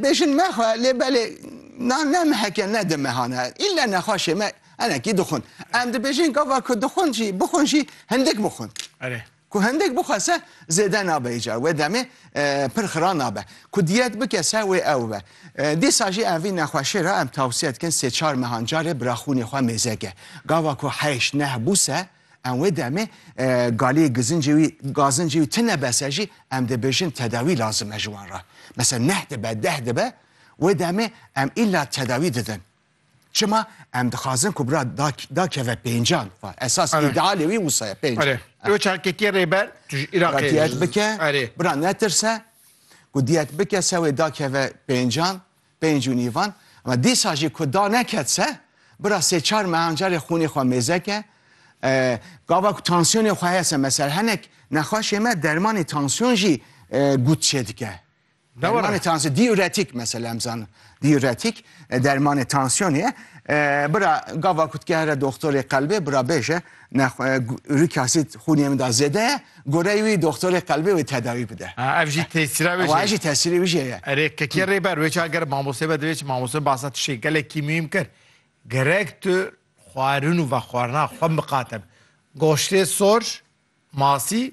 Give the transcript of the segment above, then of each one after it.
Bêjin mexwe lê belê na ne meheke ne di mehane îlle nexweşê me enekî dixwin. Em dibêjin gava ku dixwin jî bixwin jî hindik bixwin. Erê. Ku hindik bixwe se zêde nabe îcar. Wê demê pir xira nabe. Ku diyet bike se wê ew be. Dîsa jî em vî nexweşê re em tewsiye dikin sê çar mehan carê biraxwînê xwe mêzeke. Gava ku heyş neh bû se Em wê demê galiyê gizincê wî, gazincê wî tune bese jî em dibêjin tedawî lazim e ji wan re. Mesela neh dibe, deh dibe, wê demê em îlla tedawî didin. Çima em dixwazin ku bira dakeve pêncan. Esas îdealê wî wisa ye pênc. Ew çarketiyê rêber tu ji Îraqê diyet bike, bira netirse ku diyet bike se wê dakeve pêncan. Pênc û nîvan, ema dîsa jî ku da neket se, bira sê çar mehan carê xûnê xwe mêzeke, gava ku tansiyonê xwe heye se mesela henek nexweşê me dermanê tansiyon jî gut çêdike. Dermanê tansiyon diuretik mesela em zanin. Diuretik dermanê tansiyonê ye. Bira gava ku dike here doxtorê qelbê bira bêje Ne xwe ûrik asîd xûnê min da zêde ye, goreyê wî doxtorê qelbê wê tedawî bide. Ha ev jî tesîra wê jê ye. Ew jî tesîrê wî jê ye. Erê kekiya rêber wê çawa ger mamosteyê be divê çi? Mamoste basa tiştê gelekî muhîm kir. Gerek tu xwarin û vexwarina xwe miqate be. Goştê sor, masî.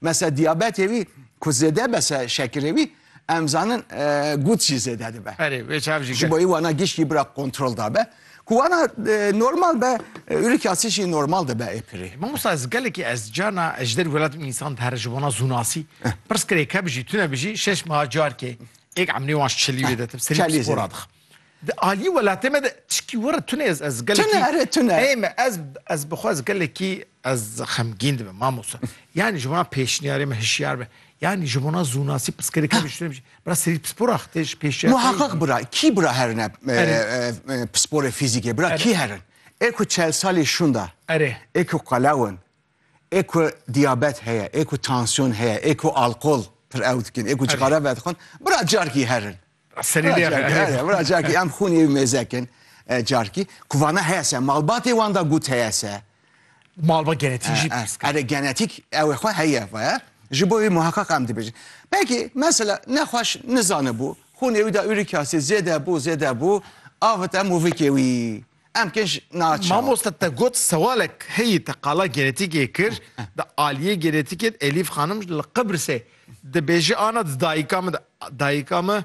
Mesela diyabetê wî ku zêde be se şekirê wî em zanin e, gut jî zêde dibe. Erê vê çav jî Ji bo wana giş jî bira kontrol da be. Ku wana e, normal be e, ûrik yasî jî normal dibe ê pirê. Mamosta ez gelekî ez cana ez ji derî welatîm însan dihere ji bona zûnasî. Pirs kirê ke bijî tune bijî şeş meha carkê êk emnê wan çilî wê detim serî Çelî psîkora zêde. dixim. Di aliyê welatê me de çikî were tune ez ez gelekî. Tune ere tune. Ey me ez ez bixwe ez gelekî ez xemgîn dibim mamosta. Yani ji bona pêşniyarê me hişyar be. Yani ji bona zûnasî pirskerê kevê ji tune bijî. Bira serî pispora xitê ji pêşniyarê. Muhaqqaq bira kî bira herin e pisporê fîzîkê bira kî herin. Ê ku çel salî şûnda. Erê. Ê ku qelewin. Ê ku diyabet heye, ê ku tansiyon heye, ê ku alkol pir ew dikin, ê ku cixara vedixwin, bira carkî herin. Serî lê herin. Bira carkî em xûnê wî mêzekin carkî. Ku vana heye se, malbatê wan da gut heye se. Malba genetîk jî pirs kir. Erê genetîk ew ê xwe heye vaye. Ji bo wî muheqeq em dibêjin. Belkî mesela nexweş nizanibû, xûnê wî da urîk asîd zêde bû, zêde bû, avit em û vikê wî. Em kê ji naçar. Mamoste te got sewalek heyî te qala genetîkê kir di aliyê genetîkê de Elîf xanim ji li Qibrisê dibêje ana di dayika min de dayika min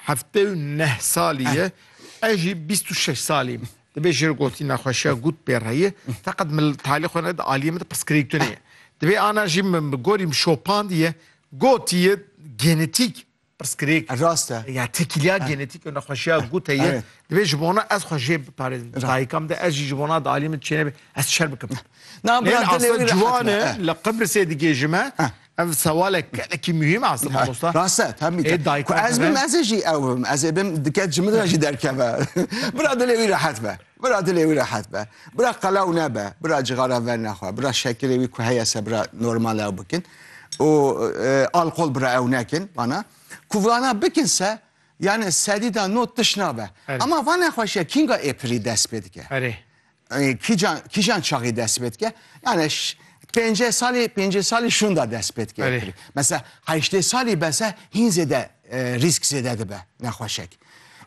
heftê û neh salî ye ez jî bîst û şeş salî me dibê ji gotî nexweşiya gût pê re ye feqet min li talî xwe ne di aliyê min de pirsgirêk tune ye dibê ana jî min bi gorî min şopandiye gotiye genetîk Pirsgirêk. Rast e. Ya tekîliya genetîk û nexweşiya gûte ye. Divê ji bona ez xwe jê biparêzim. Dayika min de ez jî ji bona di aliyê min çê nebe ez şer bikim. Na bira dilê wî ciwan e. Li Qibrisê digêjim e. Ev sewalek gelekî muhîm e aslê mamosta. Rast e tam mîte. Ku ez bim ez ê jî ew bim. Ez ê bim dike ji min re jî derkeve. Bira dilê wî rehet be. Bira dilê wî rehet be. Bira qelaw nebe. Bira cixara ver nexwe. Bira şekilê wî ku heye se bira normal ew bikin. Û alqol bira ew nekin. Vana. Ku vana bikin se yani sedî da not tiş nabe. Ama va nexweşiya kînga êpirî dest pê dike? Erê. Kîjan kîjan çaxî dest pê dike? Yani pêncê salî pêncê salî şûnda dest pê dike êpirî. Mesela heyştê salî bese hîn zêde Rîsk zêde dibe nexweşek.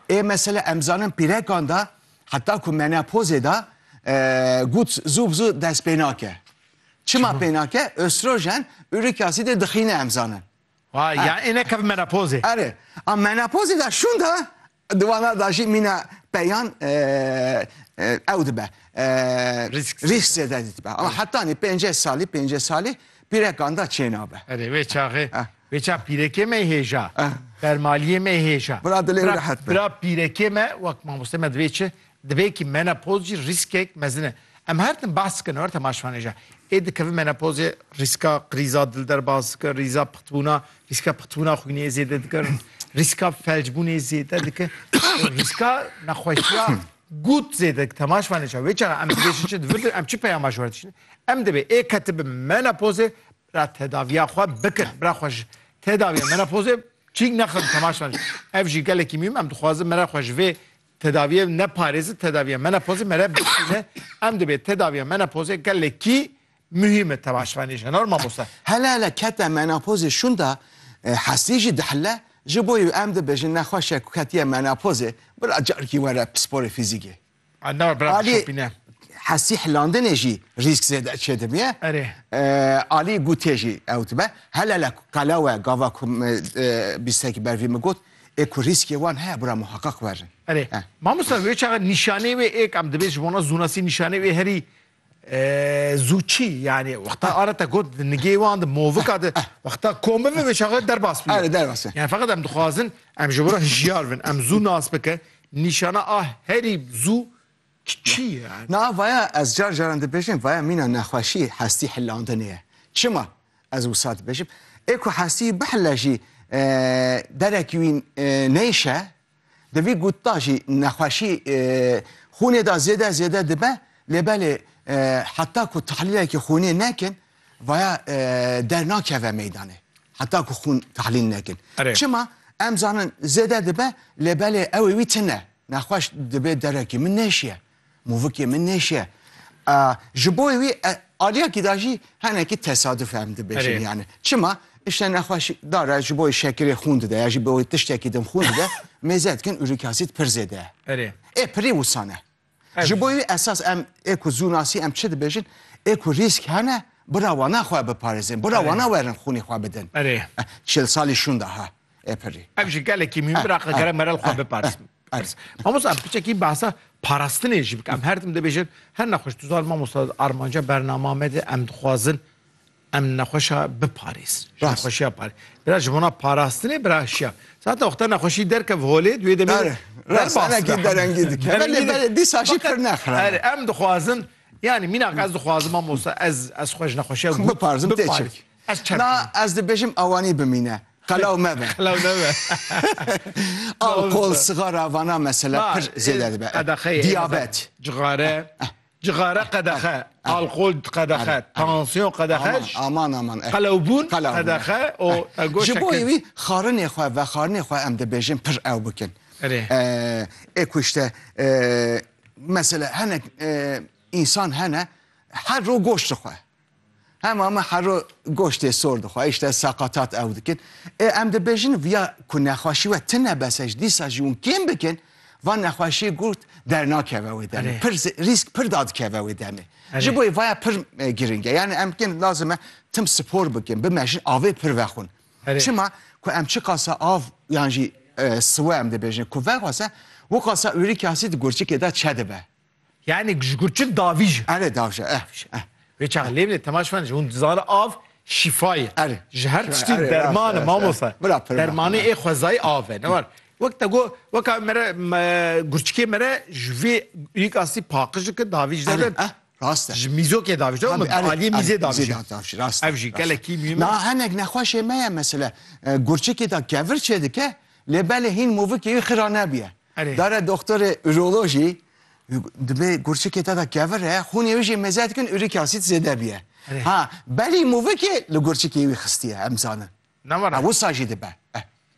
Ê mesele em zanin pîrekan de heta ku menopozê de gut zû bi zû dest pê nake. Çima pê nake? Östrojen ürik asîdê dixîne em zanin. Vay, yani êne kevin menopozê. Erê, a menopozê de şûn de Di wana da jî mîna peyan ew dibe rîsk zêde dibe. Ama hetanî pêncê salî pêncê salî pîrekan da çênabe. Erê wê çaxê wê ça pîrekê me hêja bermaliyê me hêja. Bira dilê wî rehet be. Bira pîrekê me wek mamoste me divê çi Di vê yekî menopoz jî rîskek mezin e. Em her tim behs dikin her temaşvanê jî ê dikevin menopozê rîska krîza dil derbas dike, rîza pixtbûna rîska pixtbûna xwînê yê zêde dike, rîska felcbûnê zêde dike, rîska nexweşiya gut zêde dike. Temaşvanê jî wê çaxa em dibêjin çi divir em çi peyama ji wer dişînin. Em dibê ê ketibin menopozê bira tedaviya xwe bikin. Bira xwe ji tedaviya menopozê çîk nexin temaşvanê jî. Ev jî gelekî mîm em dixwazin mera xwe ji vê Tedaviyê ne parêzi tedaviyê menopozê mere bişîne. Em dibê tedaviyê menopozê gelekî muhîm e tevaşvanê jin or mamoste. Hele hele kete menopozê şunda e, hestî jî dihile. Ji bo yî em dibêjin nexweş e ku ketiye menopozê bira carikî were pisporê fîzîkê. A ne bira Alî şopîne. hestî hilandinê jî rîsk zêde çêdibîye. Erê. E, alî gûtê jî ew dibe. Hele hele qelewe gava ku me, e, bîstekî ber vî min got Ê ku rîskê wan heye bira muheqeq werin. Erê, mamosta wê çaxa nîşanê wê êk em dibê ji bona zûnasî nîşanê wê herî zû çî yanî wexta ara te got di nigê wan di movika di wexta kom bibe wê çaxa derbas bîyo. Erê derbas be. Yani feqet em dixwazin em ji bo re hijyar bin em zû nas bike nîşana a herî zû Çi ye? Niha vaya ez car caran dibêjim vaya mîna nexweşî hestî hilandinê ye. Çima ez wisa dibêjim? Ê ku hestî bihile jî derekî wî neyşe, di vî gut da jî nexweşî xûnê da zêde zêde dibe lê belê heta ku tehlîlekî xûnê nekin vaya dernakeve meydanê. Heta ku xûn tehlîl nekin. Çima? Em zanin zêde dibe lê belê ew ê wî tune. Nexweş dibe derekê min nêşiye, movikê min nêşiye. Ji bo wî aliyekî de jî henekî tesaduf em dibêjin yani. Çima? Îşte nexweş dare ji bo şekirê xûn dide ya jî bo tiştekî din xûn dide, mêze dikin uric asid pir zêde ye. Erê. Ê pirî wisa ne. Ji bo wî esas em ê ku zû nasî em çi dibêjin, ê ku rîsk hene bira wana xwe biparêzin, bira wana werin xûnê xwe bidin. Erê. Çil salî şûnda ha. Ê pirî. Ev ji gelekî mîn bira qekere merel xwe biparsim. Erz. Mamosta em piçekî behsa parastinê jî bike. Em her tim dibêjin her nexweş tu zan mamosta armanca bernama me de em dixwazin em nexweşa biparêz. Rast. Nexweşiya parê. Bira ji bona parastinê bira şiya. Zaten wexta nexweşî derkev holê duê demê Ere, rast, enekî derengî dike. Belê belê dîsa jî pir nexre. Ere em dixwazin yani mîna ez dixwazim mamosta ez ez xwe ji nexweşiya Biparêzim tê çek. Na, ez dibêjim awanî bimîne, qelaw mebe. Qelaw nebe. Alkol, sixara, vana mesele pir zêde dibe. Qedexeyê. Diyabet. Cixare. Cixare qedexe. Alkol qedexe. Tansiyon qedexe. Aman aman. Qelawbûn qedexe. Ji bo wî xarinê xwe vexarinê xwe em dibêjin pir ew bikin. Ê ku îşte mesele hinek însan hene her roj goşt dixwe. Hema me hero goştê sor dixwe, îşte saqatat ew dikin. Ê em dibêjin viya ku nexweşî we tine bese ji dîsa jî hûn kêm bikin, van nexweşî gurt dernakeve wê demê. Pir rîsk pir dadikeve wê demê. Ji bo vaya pir giring e. Yani em kêm lazim e tim spor bikin, bimejin, avê pir vexwin. Çima ku em çiqasa av yan jî siwe em dibêjin ku vexwese, wiqasa urîk asîd gurçikê de çedibe. Yanî ji gurçik davî ji. Erê dav ji eh ji eh. Wê çax lê bile temaş men ji hûn dizane av şîfa ye. Erê. Ji her tiştî derman e mamosta. Bila pirma. Dermanê ê xwezayî av e ne war. Wek te got weka mere gurçikê mere ji vê yek astî paqij dike davî ji dere. Erê eh. Rast e. Ji mîzokê davî ji dere û aliyê mîzê davî ji. Mîzê de davî ji rast e. Ev jî gelekî mîm e. Na hinek nexweşê me ye mesela gurçikê de kevir çêdike lê belê hîn movikê wî xira nebîye. Dare doxtorê urolojî dibê gurçikê te de kevir e, xûnê wî jî mêze dikin uric acid zêde bûye. Ha belî movikê li gurçikê wî xistiye em zanin. Ha wisa jî dibe.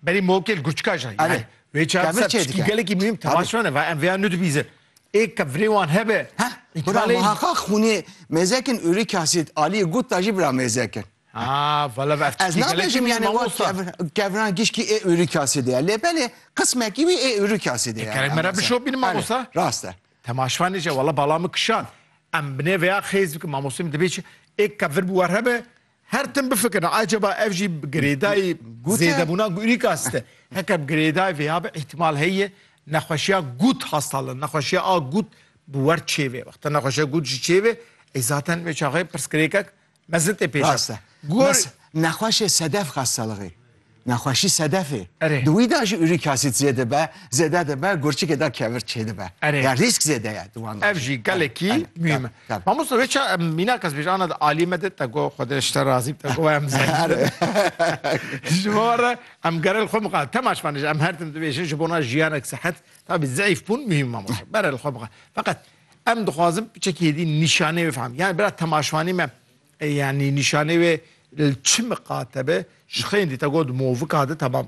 Belî movikê li gurçika jî heye. Wê çar ser piştî gelekî muhîm temaşe bane va em vêya nudibîzin. Ê kevirê wan hebe. Heh, bira muhaqaq xûnê mêze kin uric acid aliyê gut de jî bira mêze kin. Haa vala ev Ez tiştî gelekî nabêjim nû ye yanê wa mamosta. kev, kevran gişkî ê ûrî kasî de ye. Lê belê qismekî wî ê ûrî kasî de ye. Gerek me re bişo bînim mamosta. Rast e. Temaşifa nêce vala bala min kişand. Em binê vêya xêz bikim mamosta min dibê çi ê kev vir bi wer hebe her tim bifikirin acaba ev jî bi girêdayî Gûte. zêdebûna ûrî kasî de heke bi girêdayî vêya be îhtîmal heye nexweşiya gût hasta li nexweşiya a gût bi wer çêvê. Wexta nexweşiya gût jî çêvê ê zaten wê çaxê pirsgirêkek Mezitê pêş e. Rast e. Gor- Mes- Nexweşê sedef xas salixê. Nexweşî sedefê. Erê. Di wî de jî uric acid zê dibe, zêde dibe, gurçikê de kevir çêdibe. Erê. Ya rîsk zêde ye di wan de. Ev jî gelekî Tabii, tabii, mühim e. tabii. Mamosta vê ça em mînak ez bêje ana alî me de te go xwe de ji te razî te go em zehîr. Ji bo re em gerel xwe biqa temaş vanij em her tim dibêjin ji bona jiyanek sehet tabî zeîf bûn mühim mamosta. Berel xwe biqa. Feqet Em dixwazim çekî hêdî nîşanê wê fehim. Yani bira temaşvanê me yani nîşanê wê li çi miqate be ji xeyên dî te got movika de temam.